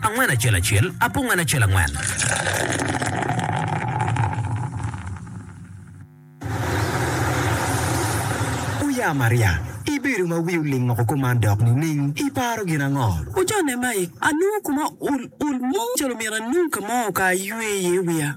Angwen acel acel, apungwen acel angwen. Oya Maria, ibedo ma wi oling woko kuman dok nining? Iparo gin ango? Ocone mai, anongo kuma ol ol mo calo myero anung ka mo ka aywe iye wiya.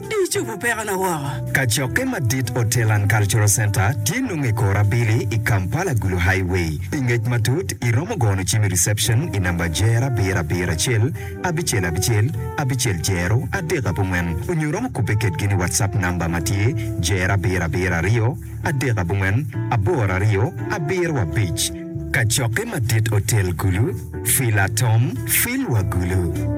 Di icubu pekona woko. Kacokke madit Hotel and Cultural Centre tye nongo i kor abili i Kampala Gulu Highway. Pi ngec matut, iromo gono cim i reception i namba jero abiro abiro acel abicel abicel abicel jero adek abongwen onyo romo kubbe kedgi ni WhatsApp namba ma tye jero abiro abiro aryo adek abongwen aboro aryo abiro abic. Kacokke madit Hotel Gulu, Fila Tom, Fil wa Gulu.